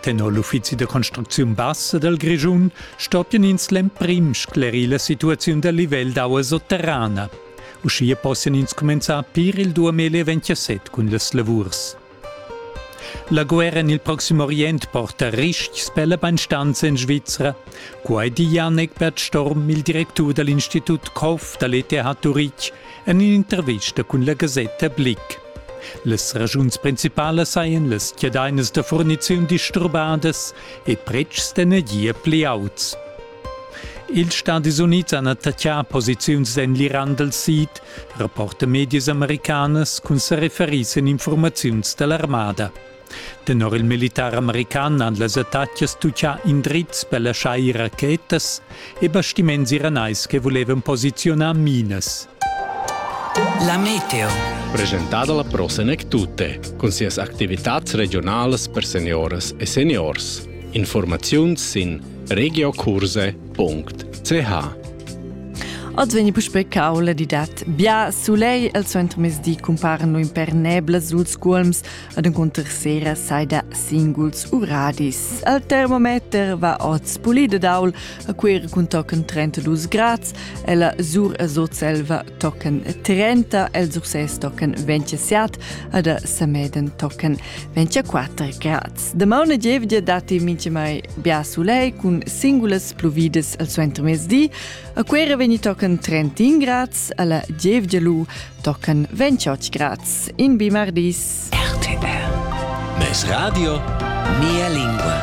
Tenor l'uffizi da construcziun bassa dal Grischun stoppian ins l'emprim sclerir la situaziun dal livel d'aua sotterrana. Uschia possian ins cumenzar pir il 2027 cun las lavurs. La guerra en il Proxim Orient porta ristgs per la Beinstanz en Svizra. Quai di Janek Bert Storm, il directur dal Institut Koff da l'ETH Turitg, en in'intervista cun la gasetta Blick. Las ragiuns principalas sajan las chiadainas da furniziun disturbadas e pretschs d'energia pli auts. Ils Stadis Unids han attaccà posiziuns en l'Iran dal sid, rapporta medias americanas cun sa referir sin informaziuns da l'armada. Tenor il militar american han las attacas tuccà indrizs per laschar ir rachetas e bastiments iranais che vulevan posiziunar minas. La meteo. Presentada la Prosenec Tutte cun sias activitads regionalas per senioras e seniors. Informaziuns sin regiocurse.ch Oz vegni puspe caula di dat. Bia sulei el suentermesdi cumparan lu imperneblas suls cuolms, Ad encunter sera saida singuls uradis. Al termometer va oz pulida daul, a quer cun tochen 32 grads, e la sur a Sotselva tochen 30, el Surses tochen 27, ad a Sameden tochen 24 grads. Damauna gievgia dati mince mai bia sulei cun singulas pluvides al suenter mesdi, a quer vegni tochen 31 grads, alla gievgia lu tochen 28 grads in bimardis. RTR. Mes radio, mia lingua.